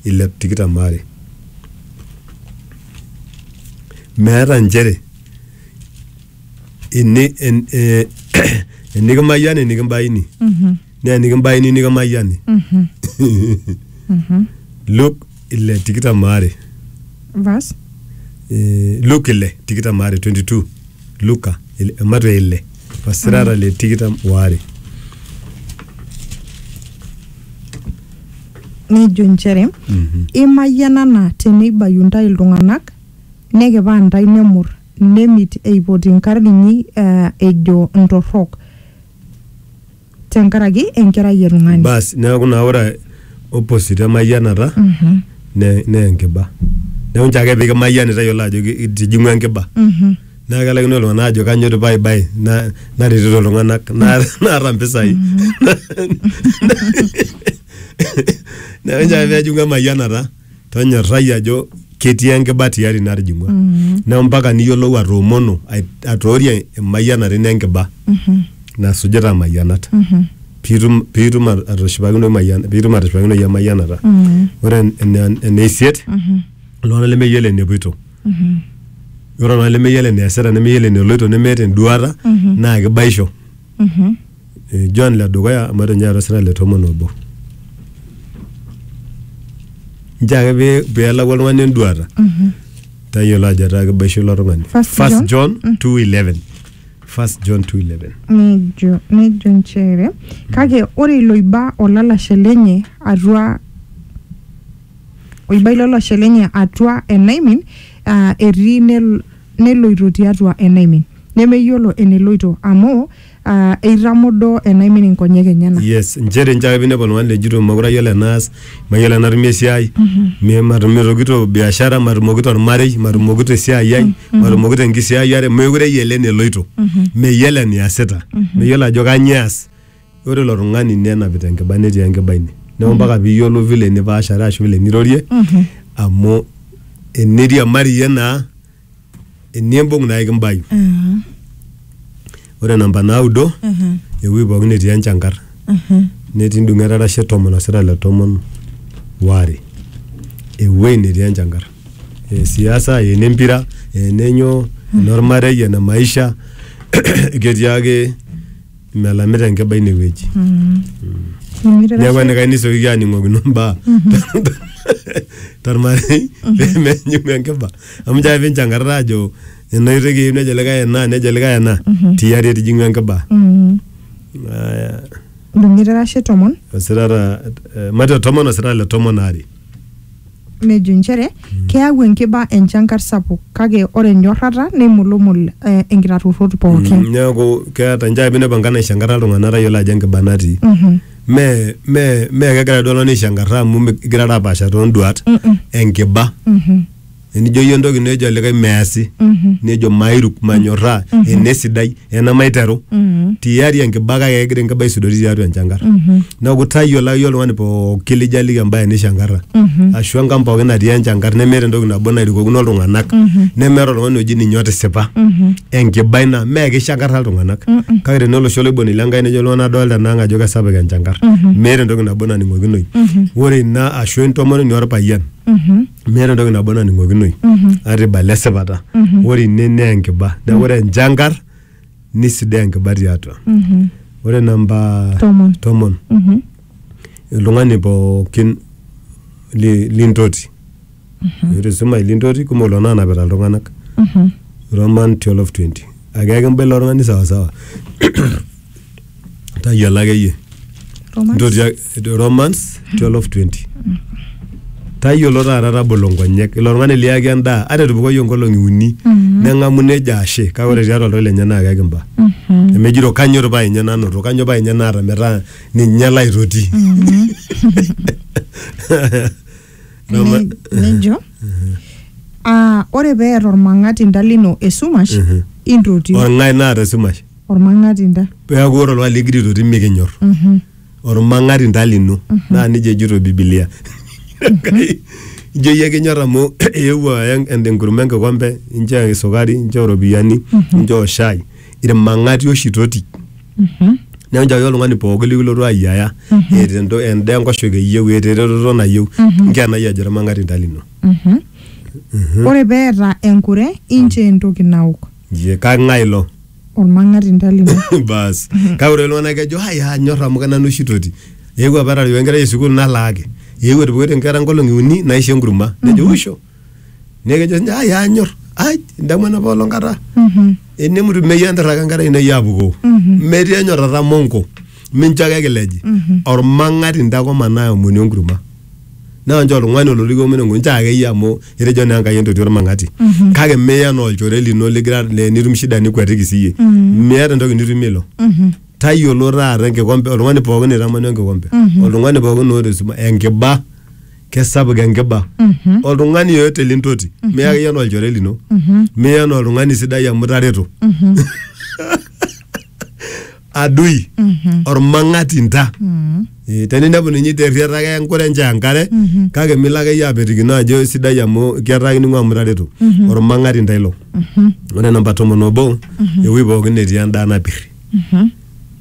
ilep tikitam are. Meeta nchere ini en, eh, enikimayiani nikimbaini Mhm. naa enikimbaini nikimayiani Mhm. Mhm. Luke ile tikitam are Verse. Eh, Luke ile tikitam are 22 Luka ile- Mateo ile vasirara le tikitam waare nejo inchere Mhm. imayianana teneibayu intae iltung'anak nekipaa intae nemur nemit eipoti inkarn inyi eh, ejo intorrok tenkaraki enkerai e tung'ani basi neeku naa ore opposite emayianata Mhm, ne- naa enkiba neeku nche ake pikimayiani tayiolo ajo ki- itijing'ua enkiba mhm. naa kelaikino iltung'anak ajo kanyo tipa ai bae na- naretito iltung'anak na- naata mpisai neeku nchoo ake pejing'u emayianata tonyorrai ajo ketii enkiba tiari natijing'ua neeku mpaka niyiolou atoomono ai- atoorie emayianata ino enkiba nasujita mayianat piitum piitum at- atushipakinoyu mayian- piitum atushipakinoyu emayianata ore ene- ene isiet iltung'anak lemeyiolo enepoito ore oltung'ani lemeyiolo eneesita nemeyiolo eneloito nemeeta enduata naa kibaisho Eh, John le dukuya amu eton ninye eeta osina le tomon obo nchoo ake pee- peelaku oltung'ani enduata tayiolo ajo etaa kibaisho ilo tung'ani First First John 2:11 First John 2:11 nejo nejo nchere kake ore iloiba olalashe lenye atua oiba ilo lashe lenye atua enaimin, aa etii nel, neloito tiatua enaimin, nemeyiolo eneloito amu aa eitamodoo enaimin inkonyek enyena. yes nchere nchoo ake pinepu oltung'ani lejito mekure ayiolo enaas mayiolo enatumie esiai mi- matumotokito biashara matumokito ormarei matumokito esiai ai matumokito enkisiayiare meekure eyiolo eneloito meyiolo eniasita meyiolo ajo kanyio eas ore ilo tung'ani nenapita enkiba netii enkiba ine neeku mpaka piyiolou vile nipaashare ashu vile nirorie amu eniriamari iyie naa enimbung naa ekimbayu Mhm. ore namba naudo Mhm. ewueji pookin netii enchankar Mhm. netii ndung'et arashe tomon osira le tomon waare ewueji netii enchankar esiasa enempira enenyo enormarei ene maisha ketii ake melamita enkiba ine wueji Nemitira neeku sii- enikae nisioki aaning'okino mbaa tormarei pemenyuku enkiba amu jaa pinchankarara ajo ena oitoi kiyieu nejo likae ena nejo likae ena tiari etijing'u enkiba Mm. Aya, Dumitira shi tomon. osirata eh, mate tomon osirata le tomon aare nejo inchere keyau enkiba enchankar sapuk kake ore enyorrata neimulumul eh, inkitarruorrot pooki Mm, neeku keeta njaa pinepu enkai naishankarra iltung'anak tayiolo ajo enkiba natii Mhm. mee mee mee kegira duo oltung'ani aishankarra amu mi- igirara apaasha toonduat Mm-mm. enkiba Mhm. enijo iyie entoki nejo olikae measi Mhm. nejo mairuk manyorraa enesidai ena maiteru tiari enkiba kake egira enkiba aisudori tiatua enchankar neeku tayiolo akeyie oltung'ani pooki lijaliki embaye nishankarra ashu enkang pooki natii enchankar nemeeta entoki nabo nairukokino iltung'anak nemeeta oltung'ani oji ninye otisipa enkiba ina mee kishankarra iltung'anak kake tenaa olosho loiboni lenkai nejo iltung'anak adolta enaang ajo kesapuk enchankar meeta entoki nabo naning'okinoyu ore ina ashu entomononi orpayian meeta entoki nabo naning'okinoi ata ibala esipata ore ine naa enkiba neeku ore enchankar nisidai enkiba tiatua ore namba Tomon. tomon Mhm. oltung'ani pookin li- lintoti ore sumash lintoti kumok lelo nanapita iltung'anak Mhm. roman 1220 akeyaki mba ilo tung'ani sawasawa tayiolo akeyie Romans. ntoti ak- romans 1220 tayiolo taata tabolo nkonyek ilo tung'ani liyaki endaa ata etupukoyie nkolong'i uni neng'amu nejo ashe kake ore tiatua oltau lenye naa kekimba emejito kanyo irpaa enye nanoto kanyo paa enye naata metaa ninye laitoti No, ma- Ne- nejo ah, ore pee eeta ormang'atinda lino esumash Mhm. intoti orng'ae naata esumash ormang'atinda peeku ore oltung'ani ligira aitoti mikinyor Mhm. ormang'ati ntalino naa nijia ejito bibilia Enkai, ijo iyie kinyor amu eewuo aya en- enkurma enkikombe inchoo esukari inchoo iropiyiani inchoo shai irmang'ati oshi toti Mhm. neeku nchooki oltung'ani pooki likilotu ayiaya eeta ento- endaa enkoshoke eyieu eeta eretoto nayieu nkenai ajo irmang'ati nta lino Mhm. ore peeta enkure inchoo entoki naok Ye, kang'ae ilo olmang'ati ntalino bas kake ore iltung'anak kejo ai anyor amu kenanu oshi toti eewuo apa atareu enkerai esukul nalaaki eewuo etupukoitie inkera nkolong'i uni naisho enkurma nejo usho Neeku kejo ninye ai anyor ai indamu enapa olong kata Mhm. enemutu meyieu enterraka enkare ino iyie apukoo Mhm. metii enyorrata monko mincho ake kileji Mhm. ormang'ati intae koma naomoni enkurma naa nchoo oltung'ani olotu kiomoni enkurma nchoo akeyie amu etejo naa Enkai entoti ormang'ati Mhm. kake miya enaa olchore lino ligira le- nitum shida nikuatiki siyie Mhm. miata entoki nitumie ilo Mhm. tayiolo taata enkikompe oltung'ani pookin oitamana enkikompe Mhm. oltung'ani pookin oota esumash enkiba kesapuk enkiba oltung'ani yoyote lintoti miya akeyie anaa olchore lino miya anaa oltung'ani sidai amu itareto adui ormang'ati nta Eh, teninepu ninye iterriata ake enkure nche enkare kake milo akeyie apetikino ajo sidai amu ketaa kining'u amu itareto ormang'ati nta ilo ore namba tomon obo ewuei pookin netii endaa napirri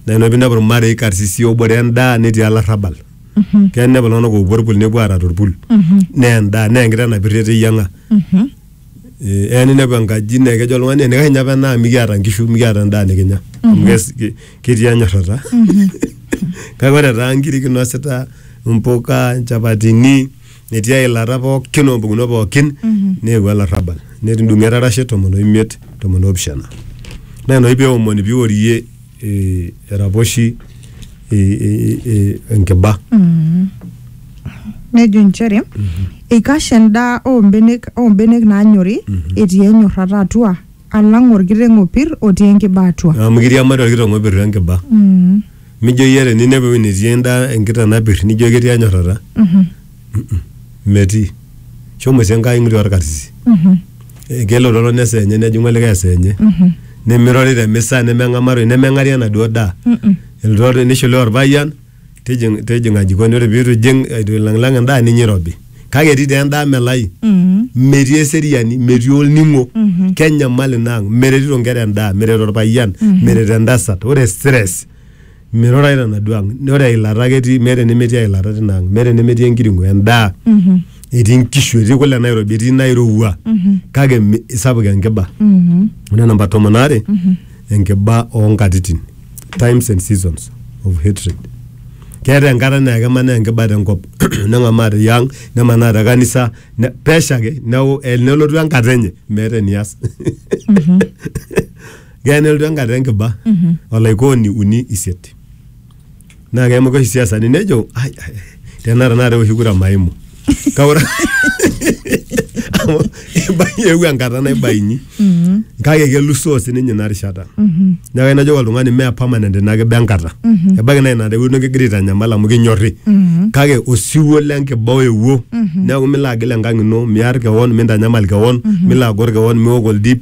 naa ina pinepu irmarei karsisi obore endaa netii olarrabal keya nepa iltung'anak oopuo orpul nepuo aara torpul neya endaa neya enkiteng napirr eteyiang'a Eh, eya ninepu enkaji naa kejo oltung'ani enikae ninye apa ena amu mikiata inkishu mikiata endaa nikinya amu kes- ke- ketii enyorrata kake ore taa inkiri kinosita impuka inchapatini etii eilata pookin ompukunot pookin neewuo olarrabal netudung'o etarashe tomon oimiet tomon opishana naa ina oshi peomoni piworie eh, eraposhi eh, eh, eh, enkiba nejo inchere eikash endaa oombenek oombenek naanyori etii enyorrata atua alang orkiteng opir otii enkiba atua amu kiriamari orkiteng opir enkiba mijo iyie teninepu ewueji netii endaa enkiteng napir nijo ketii enyorrata metii shomo sii enkai ng'iri orkarsisi Eh, kelo lolo nesa enye nejing'u olikae esaa enye nemirori te misa nemeng'amaroi nemeng'ari enaduo daa elotu nishiluya orpayian tijing tijing'a jikoni ore piitu ijing eitu ilang'ilang'a endaa ninya irobi kake etii taa endaa melai metii eseriani metii olning'o kenyamal ina ang meretito inkera endaa meret orpayian meret entasat ore stress Mirurae tenaduo ang. Ore eilata ake etii, meeta enemetii eilata tina ang. Meeta enemetii enkiring'o, endaa. Etii nkishu, etii kule nairobi, etii nairowua. Kake mi- isapuk enkiba. Ore namba tomon aare, enkiba onkatitin. Times and seasons of hatred. Keeta enkata naa kemanaa enkiba tenkop. Neng'amaa te ang, nemanaa te kanisa, ne- pesho ake. Neeku eh, nelotu enkata enye, meeta enias. Keya nelotu enkata enkiba olaikooni uni isiet naa keimuka oshi siasani nejo "Ai, ai, ai, tenaa tenakata eoshi kura maimu kaura amu ibai- eewuo enkata naibainyi kake kelusoo sininye ina rishata neeku ayieu najoki oltung'ani mee permanent ina kiba enkata ebaiki naa ina rewueji nikigira aitanyamal amu kinyorri kake osiwuo lenkiba oyewuo neeku milo agil enkang ino miar kewon mintanyamal kewon milo agor kewon miok oldip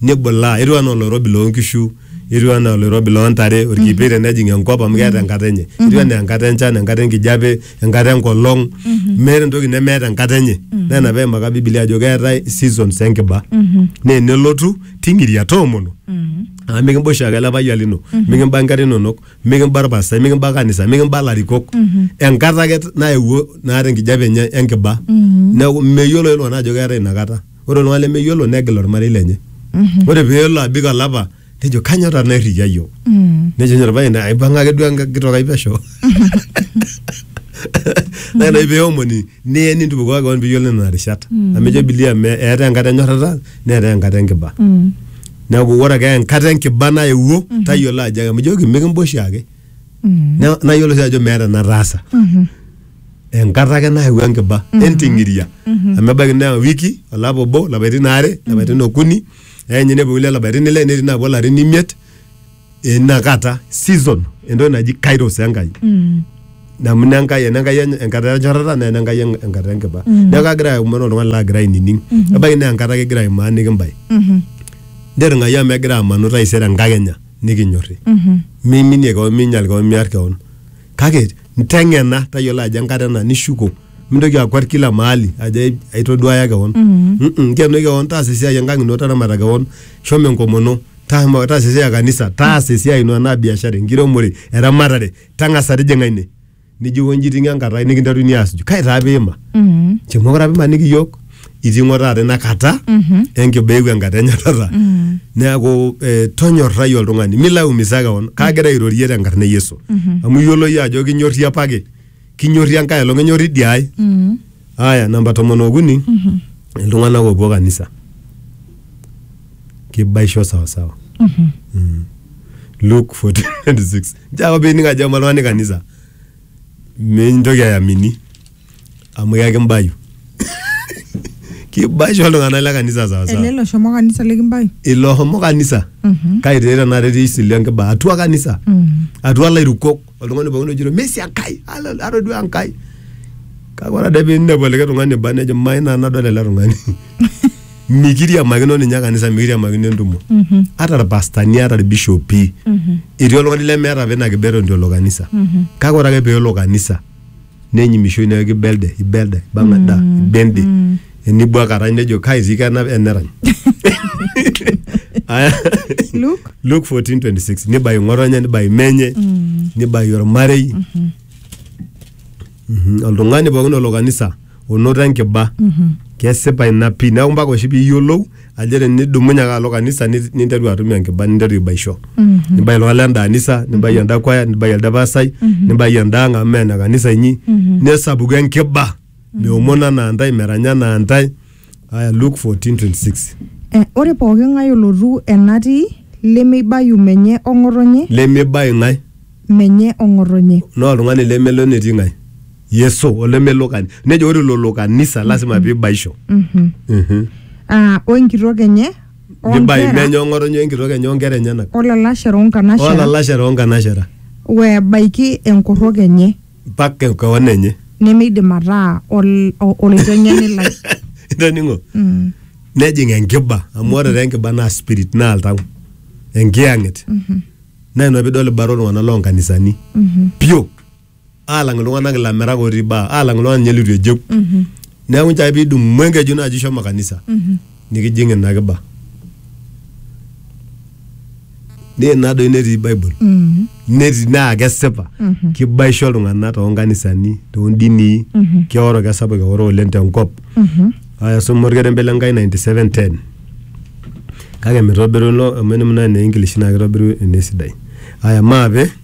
nibulaa etiu anaa oloirobi loonkishu etiu anaa oloirobi loontare orkipei tenejing enkop amu keeta enkata enye etiu anaa enkata enchan enkata enkijape enkata enkolong meeta entoki nemeeta enkata enye naa ina peimaka bibilia ajo keetae seasons enkiba naa enelotu ting'iria toomono amu mikimba oshiake ele payian lino mikimba inkera inonok mikimba orpastai mikimba kanisa mikimba ilarikok enkata ake nayewuo naata enkijape enye enkiba neeku meyiolo ake iltung'anak ajo keetae inakata. ore oltung'ani lemeyiolo negil ormarei lenye ore peelo abik olapa nejo kanyoo taa nairrikia yiok nejo ninye orpayian aipang'a ake duo enkitok ai pesho naa ina oshi peomoni niye nintupukuo kewon piyiolo nena rishat amu ejo bilia me eetae enkata enyorrata neetae enkata enkiba neeku ore ake enkata enkiba naewuo tayiolo ajo amu ijoki mikimba oshiake Na- nayiolo sii ajo meeta enataasa enkata ake nayau enkiba enting'iria amu ebaiki naa wiki olapa obo lapaitin aare lapaitin okuni eeny nepuo kulie lapaitin ile netii naapuo ilarin imiet inakata season entoki naji kairos enkai amu ina enkai ena enkai eny- enkata enchatata naa ena enkai en- enkata enkiba neeku kagira aomon oltung'ani laagira ainining ebaiki naa enkata ake igira aimaaniki mbae ntirring'ayu amu egira amanu taisere enkakenya nikinyorri miminie kewon miinyal kewon miar kewon kake nteng'ena tayiolo ajo enkata ena nishuko mintoki akwet kila mahali ajo ai- aitoduaya kewon Mm-mm, nkeno kewon taasa esiai enkang ino taramata kewon shomo enkomono tama- taasa esiai e kanisa taasa esiai ino enaa biashara enkiremore eramatare tang'asa tijing'a ine nijo onji iting'o enkata ai nikinteruni aasuju kai taa piima Mm. nchoo mokure apa imaniki iyiok itii ng'o taata ina kata enkibaa eewuo enkata enyatata neaku eh, tonyorrai oltung'ani milo aumisa kewon kaagira airorie tenkarna e yesu amu iyiolo iyie ajo kinyorri apake kinyorri enkae olong enyorri idia ai aya namba tomon okuni iltung'anak oopuo kanisa kibaisho sawasawa Mm. Luke 14:26 njoo ake pining ajo ema oltung'ani kanisa mintoki ayamini amu yaki mbayu kibasho iltung'anak le kanisa ele sawasawa loshomo kanisa likimbayu ilo homo kanisa Mhm. kai tee tenakata etii isili enkiba atua kanisa Mhm. atua lairukok oltung'ani pookin ojito mesi enkai ala- atodua enkai kake ore ade piinepu olikae tung'ani ba nejo mai naa nadol ele tung'ani mikiriamakino ninye kanisa mikiriamakino entumo Mhm. ata irpastani ata irbishopi Mhm. etii oltung'ani lemeeta apa ina kibeton tiolo kanisa Mhm. kake ore ake peelo kanisa nenyimishoi neeku ibelde ibelde ibang'a da ibende enibuak arany nejo kai sii kenap enerany Aya. Luke? Luke 14:26 nibai ng'otonye nibai menye nibai ormarei Mhm. oltung'ani pookin olo kanisa onoto enkiba kesipa ina pii neeku mpaka oshi piiyiolou ajere nidumunye ake alo kanisa nit- ninteru atum enkiba ninteru aibaisho nibai iltung'anak lenda anisa nibai enda kwaya nibai elde pasai nibai enda ang amu meena kanisa inyi nesapuku enkiba meomon anaa ntae meranya anaa ntae aya Luke 14:26 Eh, ore pooki ng'ae olotu enatii lemeibayu menye ong'otonye lemibai ng'ae menye ong'otonye naa oltung'ani lemelo netii ng'ae yeso olemelo kani nejo ore lolo kanisa lazima pibaisho Mhm. Mhm. Ah, o enkitok enye o nibai nkera menye ong'otonye enkitok enye onkera enyenak o lalashera o nkanashera olalashera onkanashera webaiki enkorrok enye mpaka kewon enye nemeidim ataa ol- o- olaiteng'eni lai itoning'o Mm. nejing enkiba amu ore taa enkiba naa spirit naa oltau enkiyang'et naa ina pidol ibara oltung'anak loonkanisani Mhm. pio aalang iltung'anak ilamirak otii baa aalang iltung'anak ninye litu ejeu neeku nchai piidung'u enkeju naaji shomo kanisa nikijing ina kiba naa ina doi netii bible netii naa kesipa kibaisho iltung'anak toonkanisani toondinii keoro kesapuk eoro oleng tenkop aya suma orkerembe le Nkai 97:10 kake mitobiru ilo amu eniminaa ene English naa kitobiru enesidai aya maape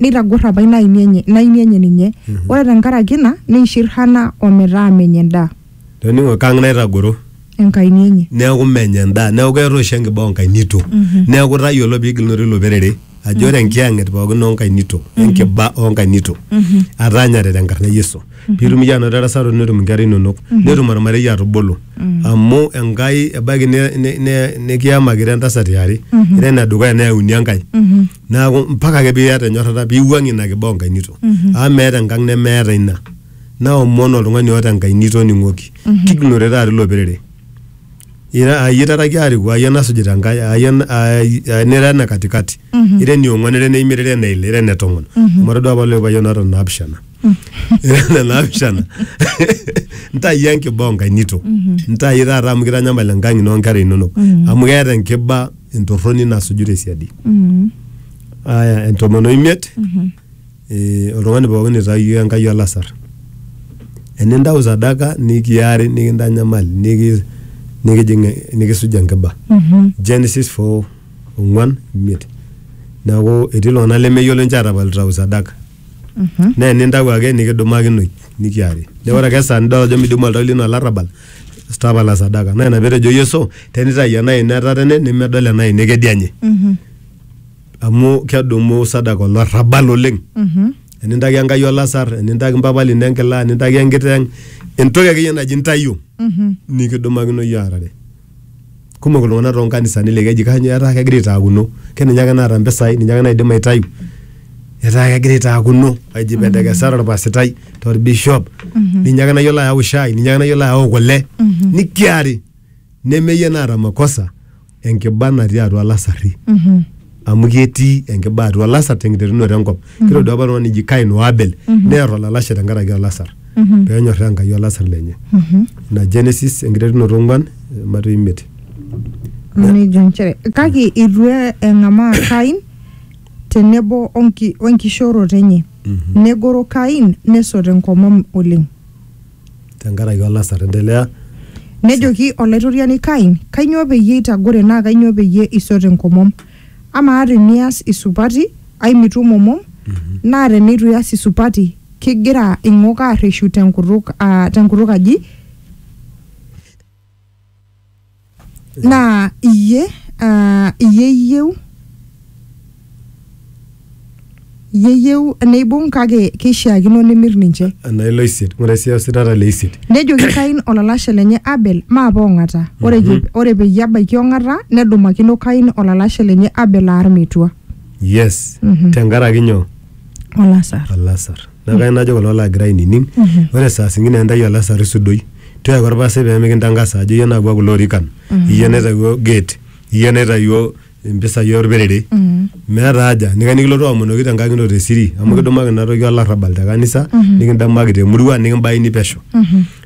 neitagor apa ina aini enye, ina aini enye ninye ore tenkaraki ina neishir hana ometaa menya endaa toning'o kang naitagoro enkaini enye neeku menya endaa neeku keeta oshi enkiba onkainito neeku tayiolo piigilunore ilo perere ajo ore enkiyang'et pookin onkainito enkiba onkainito ataanyare tenkarna e yesu piitum iyie anoto erasaroto netum inkera inonok netum ormarei atubulu amu enkai ebaiki ne- ne- ne- nikiyamakita entasat iare ira enedukuya neyauni enkae neaku mpaka ake piata enyorrata piwuang'ie ina kiboo nkainito amu meeta enkang nemeeta ina naomon oltung'ani oota enkai nitoning'oki kigilunore taata ilo perere ira ayie taraki ariku ayie nasujita enkai ayie en- ai- ai- nira ene katikati ira eniong'uan ira eneimiet ira eneile ira ene tomon amu atodua apa lelo payiani oota naapishana ira ene naapishana ntayu enkibaa onkainito ntayu taata amu kitanyamal enkang ino onkera inonok amu keeta enkiba entorroni nasuju tesiadi Mm. aya entomon oimiet Mhm. eh, oltung'ani pookin itayio enkai olasar enintau sadaka nikiari nikintanyamal niki- nikijing nikisuj enkiba Mhm. genesis 4 ong'uan imiet neeku etii iltung'anak lemeyiolo ninche atapal itau sadaka Mhm. naa enintau ake nikidumakinoi nikiari neeku ore ake esaa nidol ajo midimu oltau lino olarrabal tapala sadaka naa ina petejo yesu tenitayu ena ino etatene nemedol ena ino ekedianye Mhm. amu kedumu sadaka olarrabal oleng Mhm. enintaki enkai olasar enintaki mpapa lino enkila enintaki enkiteng entoki akeyie naji ntayu Mhm. nikidumakino yie aarare kumok iltung'anak too nkanisani laa keji kainyo etaa kegira aitaakuno ke ninye ake naata mpisai ninye ake naidim aitayu etaa kegira aitaakuno aji pendekesare orpasitai torbishop ninye ake nayiolo ayau shai ninye ake nayiolo ayau kule nikiari nemeyie naata makosa enkiba natii atua lasarri amu ketii enkiba atua olasar tenkiterunoto enkop mm -hmm. kitodua apa oltung'ani ji kain o abel mm -hmm. neer olalashe tenkaraki olasar mm -hmm. peenyorraa enkai olasar lenye mm -hmm. ina genesis enkiterunoto ong'uan mato imiet nejo nchere kake itu e- eng'amaa kain tenebo onki- wenkishooroto enye mm -hmm. negoro kain nesot enkomom oleng tenkaraki olasar. Endelea. Nejoki Olaitoriani Kain, Kainyoo peyie itagore naa kainyoo peyie isot enkomom? Amaa te nias isupati, ai mitu imomom, naa te neitu ias isupati, kigira ing'ok aarreshu te nkutuk aji? naa iyie uh, iyie iyieu iyie iyieu neibung kake keishiakino nimir ninche enaa ilo isiet ng'ura sii ositata le isiet nejoki kain olalashe lenye abel maapa ong'ata ore, mm ore peyie ebaiki ong'ata nedumakino kain olalashe lenye abel aar metua yes Mhm. tenkaraki nyoo olasar olasar Neaku kayieu najo kulo laagira ainining, ore saa singine intayu olasar isudoi. Tiaki olpastai pee mikintangasa ajo iyie naawua kulo orikan, iyie naitayio gate, iyie naitayio impisai olperere. Meeta haja, eneikash nikilotu aomonoki te nkang ino te siri amu kidimaki ina toki olarrabal te kanisa, nikidimaki te murua nikibaini pesho.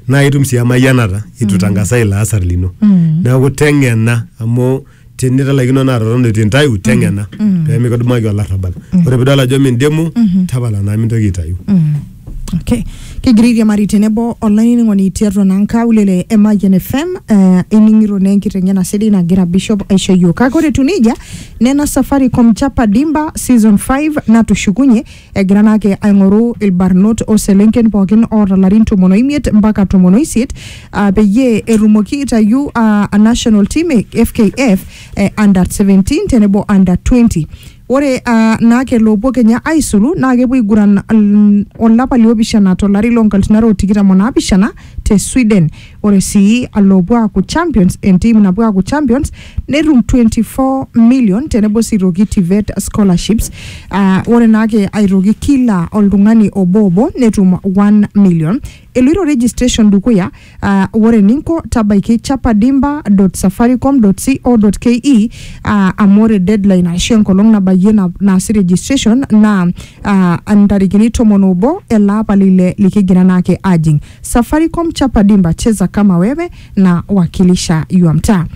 Naa itum sii emayianata eitu itangasa ilo asar lino. Neaku teng'ena amu tinitalaikino naa totona etu intayu teng'ena pemikidumaki olarrabal ore pidol ajo mindimu tapala naa mintoki aitayu Okay. Kigira airiamari tenebo olainining'oni tiatua naa nkaulele e Mayian FM eh, ining'ito naa enkiteng'ena sidai nagira Bishop aisho yiok. Kake ore etiu nejia, nena Safaricom Chapa Dimba season 5 natushukunye Egira naa ake aing'oru ilbarnot o selenken pookin oota larin tomon o imiet mpaka tomon o isiet aa peyie etumoki aitayu aa a national team e FKF e under 17 tenebo under 20. Ore aa naake loopuo kenya aisulu naa kepuo aiguran mm olapa liopishana to lari loo nkalifuni are o tikitam o naapishana te Sweden. Ore sii aloopuo aaku champions entiim napuo aaku champions netum 24 million tenebo sii toki TVET scholarships. Ah, ore naake aitoki kila oltung'ani obo obo netum 1 million. Eloito registration dukuya, ah, ore eninko tabaiki chapadimba.safaricom.co.ke ah, amu ore deadline ashu enkolong nabayie na- naasi registration naa ah, ntarikini tomon obo ele apa le ile likigira naake ajing. Safaricom chapa dimba cheza kama wewe na wakilisha yua mtaa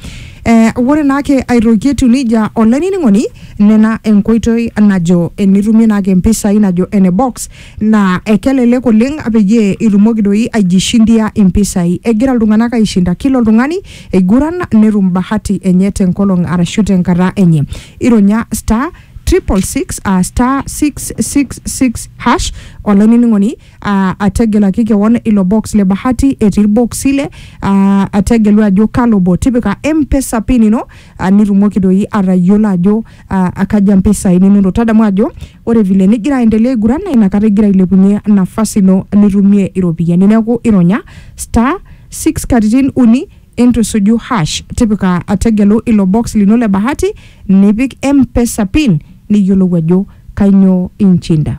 eh, ore naake airogie etiu nejia olainining'oni nena enkoitoi najo enitumie naake impisai najo ene box naa ekelelek oleng peyie itumoki doi aijishindia impisai egira iltung'anak aishinda kila oltung'ani eiguran netum bahati enye tenkolong arashu tenkata enye ironya star triple six uh, star 666 hash olainining'oni Aa, ategelaki kewon ilo box le bahati etii ilboksi ile. Aa, ategelu ajo kalo obo. Tipika M-Pesa pin ino aa, nitumoki doi atayiolo ajo aa, kaja mpisai ninoto. Tadamu ajo ore vile nigira aendelea aiguran naa inakata igira ailepunye nafasi ino nitumie iropiyiani. Neeku ironya star six katitin uni intu isuju hash. Tipika tegelu ilo box lino le bahati nipik M-Pesa pin niyiolou ajo kainyoo inchinda.